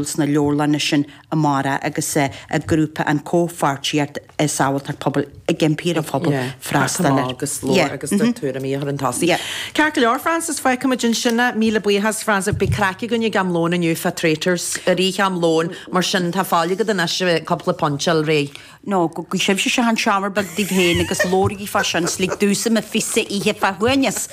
sna leabharlanna sin amárach agus a grúpa an comhpháirtíocht i Sábháilteacht Pobail ag impí ar an phobal freastal air agus labhairt agus do tuairimí a chur chun tosaigh. Ceart go leor, Frances, feicfimid ansin thú. Míle buíochas, Frances. Beidh craic againn ag am lóin inniu fá Traitors, i rith am lóin, mar sin tá faill agat anois ar cúpla pointe, a fháil réidh? Nó go bhfaighidh sibh seomra beag daoibh féin agus labhraígí fá sin, 's lig damhsa mo phíosa a ithe fá shuaimhneas.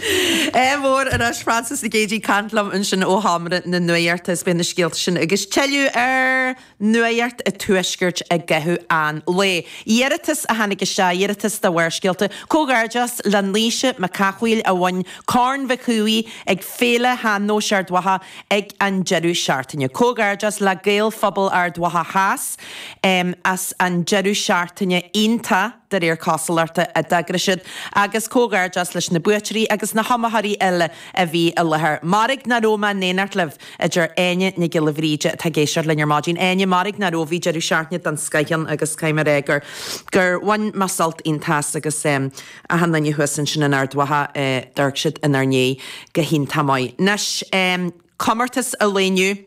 Ádh mór arís Frances Nic Géidigh, ag caint liom ansin ó sheomra na Nuaidheachta is beidh na scéalta sin agus tuilleadh ar Nuaidheacht an Tuaiscirt i gcaitheamh an lae. Iarratas a tháinig isteach, iarratas do Bharrscéalta. Comhghairdeas le Naoise Mac Cathmhaoil a bhain Corn Mhic Shuibhigh ag Féile Shean-Nóis Ard Mhacha ag an deireadh seachtaine. Comhghairdeas le Gaelphobal Ard Mhacha Theas. as an deireadh seachtaine iontach, de réir cosúlachta, a d'eagraigh siad, agus comhghairdeas leis na buaiteoirí agus na hiomaitheoirí uile a bhí i láthair. Mairg ná raibh mé in éineacht libh, a deir Áine Nic Giolla Bhríde atá ag éisteacht linn ar maidin. Áine, Mairg ná raibh, bhí deireadh seachtaine den scoith ann agus caithfidh mé a rá gur, gur bhain mé sult iontach as agus achan duine thuas ansin in Ard Mhacha, d'amharc siad inár ndiaidh go hiontach maith. Anois, comórtas ealaíne inniu.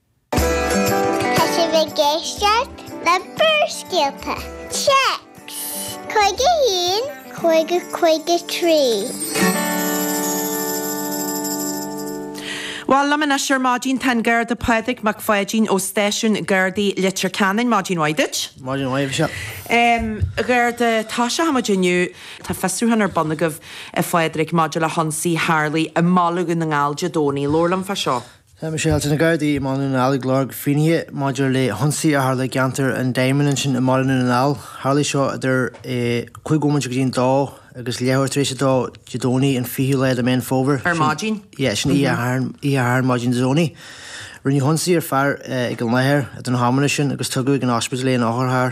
Tá sibh ag éisteacht le Barrscéalta, Téacs, 51, 50, 53. Bhuel liom anois ar maidin, tá an Garda Pádraig Mac Pháidín ó stáisiún Gardaí Leitir Ceanainn. Maidin mhaith duit. Maidin mhaith, a Mhichelle. Garda, toiseachaidh muid inniu, tá fiosrúchán ar bun agaibh, a Phádraig, maidir le hionsaí a tharlaigh i mBaile Dhún na nGall Dé Domhnaigh. Labhair liom fá seo. Tá Michelle, tá na Gardaí i mBaile Dhún na nGall ag lorg finnéithe maidir le hionsaí a tharla i gceantar an Diamond ansin i mBaile Dhún na nGall. Tharlaigh seo idir a 5 bhomaite go dtí an 2 agus leathuair tar éis a 2 Dé Domhnaigh an 20ú lá de Méan Fómhair, Ar sin maidin? yeah, sin oíche Shathairn, oíche Shathairn maidin Dé Domhnaigh. Rinneadh ionsaí ar fear ag an láthair idir na hamanna sin agus tugadh ag an ospidéal é an othar thar.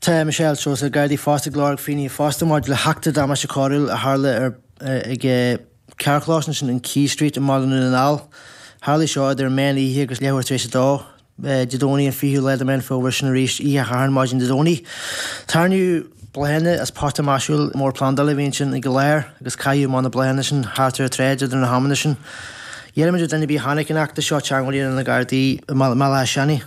Tá Michelle, tá na Gardaí fosta ag lorg finnéithe fosta maidir le heachtra damáiste coiriúil a tharla ag carrchlós ansin in Quay Street i mBaile Dhún na nGall. Tharlaigh seo idir an méan oíche agus leathuair tar éis a dó Dé Domhnaigh an 20ú lá de Méan Fómhair sin arís oíche Shathairn maidin Dé Domhnaigh. Tarraingíodh bláthanna as pota maisiúil mór plandála a bhí ansin ag an láthair agus caitheadh amach na bláthanna sin thart ar an tsráid idir na hamanna sin. Iarraimid ar dhuine ar bith a chonaic an eachtra seo teangmháil a dhéanamh le na Gardaí i mBaile Átha Seanaidh.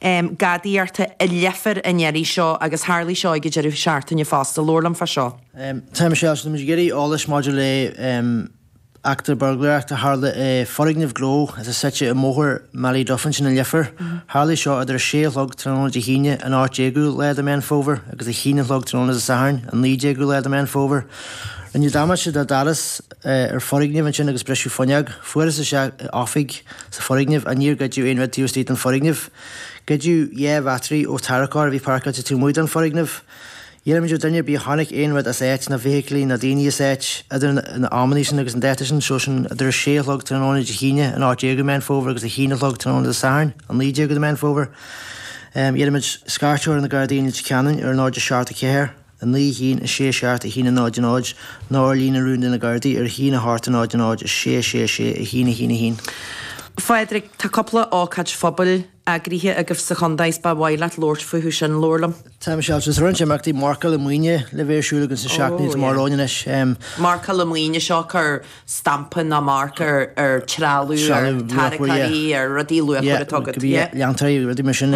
em, gadaíocht i Leifear an iarraidh seo agus tharlaigh seo ag an deireadh seachtaine fosta, labhair liom fá seo. em, Tá Michelle, táimid ag iarraidh eolais maidir le, em, eachtra buirgléireacht a tharla i foirgneamh gnó atá suite i mBóthar Ballyduff ansin i Leifear, tharlaigh seo idir a sé a chlog tráthnóna Dé hAoine an 18ú lá de Mheán Fómhair agus a haon a chlog tráthnóna Dé Sathairn an 19ú lá de Mheán Fómhair. Rinneadh damáiste do dhoras, eh, ar foirgneamh ansin agus briseadh fuinneog, fuarthas isteach i oifig, sa foirgneamh. Ach níor goideadh aon rud taobh istigh den foirgneamh. Goideadh dhá bhattery ó tarracóir a bhí páirceáilte taobh amuigh den foirgneamh. D'iarraimid ar duine ar bith a chonaic aon rud as áit, ná bhfeithiclí ná daoine as áit, idir na amannaí sin agus an dáta sin, so sin idir a sé a chlog tráthnóna Dé hAoine an 18ú de Meán Fómhair agus a haon a chlog tráthnóna Dé Sathairn an 19ú de Meán Fómhair, d'iarraimid scairteadh ar na Gardaí i Leitir Ceanainn ar náid a seacht a ceathair. 9 a haon, 6 a seacht, 1 a náid, 0, nó ar líne rúin de na gardaí, ar a haon a hocht, a náid, 0, 6 a sé, 6 a haon, 1 a haon. Phádraig, Tá cúpla ócáid phobail eagraithe agaibh sa chontae is ba mhaith leat labhairt fúthu sin, labhair liom. Tá, Michelle, tá roinnt imeachtaí marcála maoine le bheith ar siúl againn sna seachtainí atá amach romhainn anois. Marcála maoine, seo cur stampa ná marc ar trealamh, ar tháirgí, ar rudaí luachmhara atá agat. Go mbeidh leantóirí, rudaí mar sin.